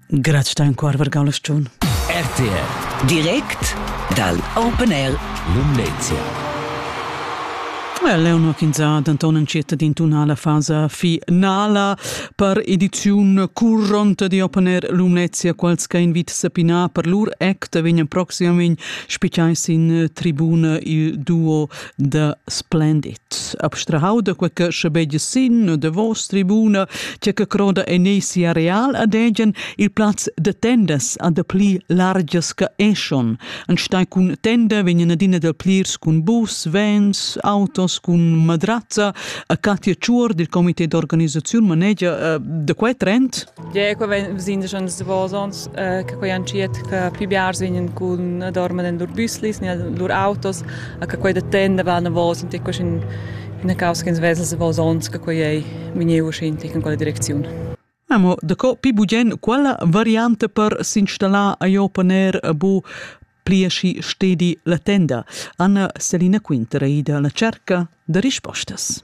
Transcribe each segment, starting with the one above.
Graz dein Chor vergau la stun. RTR Direkt dal Open Air Lumnezia. Eleonor Kinza denton entschiet din tunala fasa finala per ediziun curront di Open Air Lumnezia quals che invit sapina per lur act vegnan proximamein spichai sin tribuna il duo da splendid. Abstrahau da quei che schabegia sin u davos tribuna, tge che croda en ei sia real ad egen il plaz de tendas a de pli largias che eschon. Anstei cun tenda vegnan adina da plirs cun bus, vens, autos cun madrazza. A Katja Tschuor, dil comité d'organisaziun, manegia uh, de quei trend? Ge quei vegn sin schon davos ons eh, che quei entschiet che più biars vegnan cun dormir in lur büslis ni in lur autos a che quei da tenda va davos in ticco in una causa che svesa davos ons che quei ei vegniu uscin in quella direcziun. Amo daco pi bugen quella variante per s'installar a jo paner bu pliaschi stedi la tenda. Anna Selina Quinter è ida alla cerca da rispostas.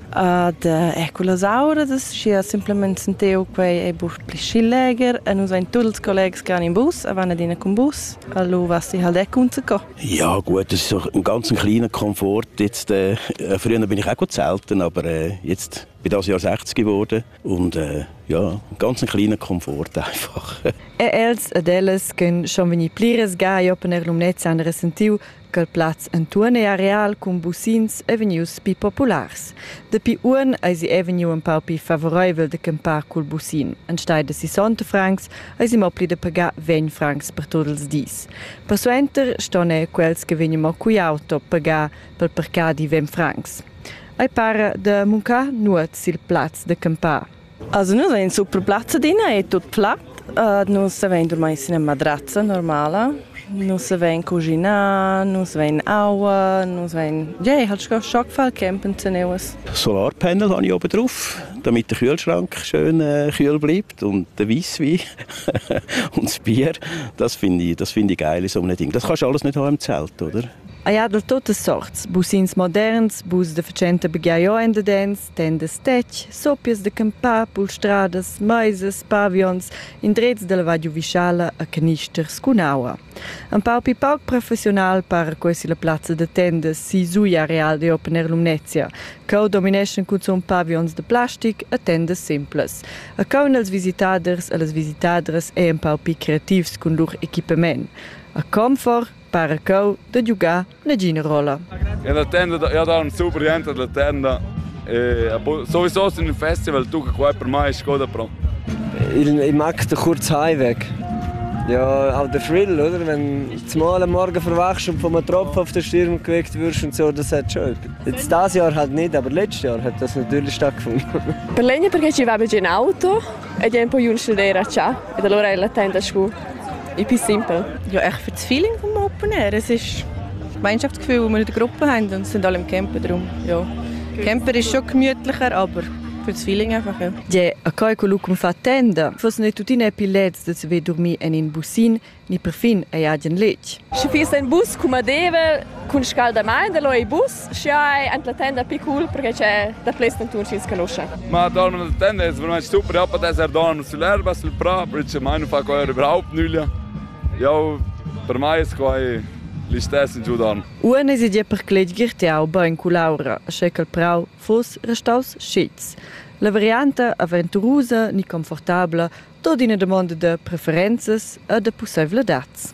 Ad eir cullas auras, schi simplamaing senteu quai è bus pli schi leger e nus vain tuot ils collegs che van in bus e van adina cun bus. Allo vas ti halt ecco unzucò. Ja gut, das ist doch ein ganz kleiner Komfort. Jetzt, äh, früher bin ich auch gut selten, aber äh, jetzt bin das Jahr 60 geworden und äh, ja, ein ganz kleiner Komfort einfach. E els ed ellas ch'en schon vegni pliras ga e open er l'umnezza han resentiu Quel plaz entuorn ei areal cun busins ei vegnius pli populars. Dapi uonn eisi ei vegniu empau pli favoreivel da campar cul busin. Enstei da sissonta francs eisi mo pli da pagar vegn francs per tot ils dis. Persuenter ston ei quels che vegnan mo cugl auto pagar pel parcadi ventg francs. Ei para da muncar nuot sil plaz da campar. Also nus vein super plazza adina, è tut plat. Uh, nus vein dormir sin ina matrazza normala. Nus vein cuginar, nus vein aua, nus vein... Ja, ich habe schon gefallen, campen zu nehmen. Solarpanel habe ich oben drauf, damit der Kühlschrank schön äh, kühl bleibt und der Weisswein und das Bier. Das finde ich, das finde ich geil in so einem Ding. Das kannst du alles nicht haben im Zelt, oder? Ah ja, durch tote Sorts. Bus ins moderns, bus de facente begia jo ende dens. Tendas tetg, soppias da campar, pulstradas, meisas, pavions, indrezs dalla Val Giuvischala a canister scun aua. Empau pli pauc professional para quei silla plazza da tendas sisugl areal da Open Air Lumnezia, cheu domineschan cunzun pavions da plastic e tendas simplas. E caun els visitaders e las visitadras ei empau pli creativs cun lur equipament. A Comfort para cheu da giugar nagina rolla. E la tenda, io do un super gente della tenda. E sowieso in un festival, tu che qua per me è scoda pro. Ich, ich mag den kurzen Heimweg. Ja, auch der Thrill, oder? Wenn du zumal am Morgen verwachst und von einem Tropfen auf den Sturm geweckt wirst und so, das hat schon. Jetzt dieses Jahr halt nicht, aber letztes Jahr hat das natürlich stattgefunden. Per l'egna perché ci vado in auto e tempo io non studiare già e allora è la tenda su. Ich bin simpel. Ja, ich für das Feeling vom Open Air. Es ist Gemeinschaftsgefühl, wo wir eine Gruppe haben und sind alle im Camper. Darum, ja. Camper ist schon gemütlicher, aber für das Feeling einfach, ja. Je, a coi quello che mi fa tenda, fosse ne tutti ne pilets de se dormir en in busin, ni perfin a iagen letg. Sche fies ein bus cum a deve, cun scalda mein, da lo ei bus, Schai en la tenda pi cool perché c'è da ples dentur chi scanuscha. Ma dorm in la tenda ist veramente super, ja, per esser dorm sull'erba, sul prà, perché mai non fa quella überhaupt nulla. Ja, per mai ist quai l'istesso in giù dorm. Uone si dia per cletgir te auba in culaura, sche che il prau foss restaus scits. La varianta aventurusa ni confortabla tot ina domanda de preferenzas e de pusseivladads.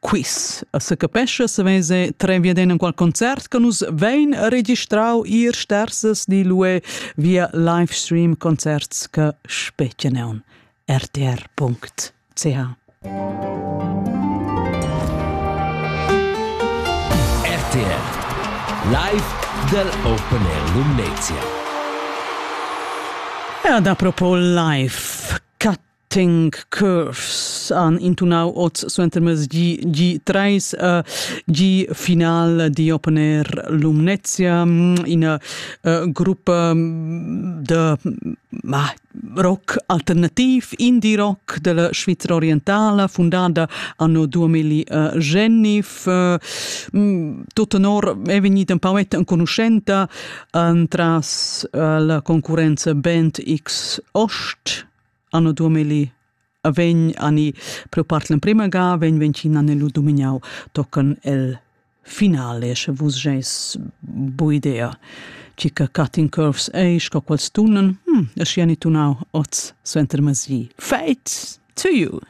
quiz. Se capescha se vese trenvia den in qual concert che nus vein registrau ir stersas di lue via livestream concerts che speceneon rtr.ch. RTR Live del Open Air Lumnezia. E ad apropos live Tank Curves han intunau oz suentermezdi G3 uh, G-final di Open Air Lumnezia, ina uh, gruppa de ma, rock alternativ, indie rock della Svizzera orientale, fondata anno 2009. Uh, tutto nor è venuta un pauetta enconoscente entras uh, la concorrenza Band X Ost anno 2000 a vegn ani pro part l'emprema ga vegn ventschina nello dumignau tocan el finale sche vus geis bu idea chica cutting curves ei sco quals tunen hm es ni tunau oz suenter masi fate to you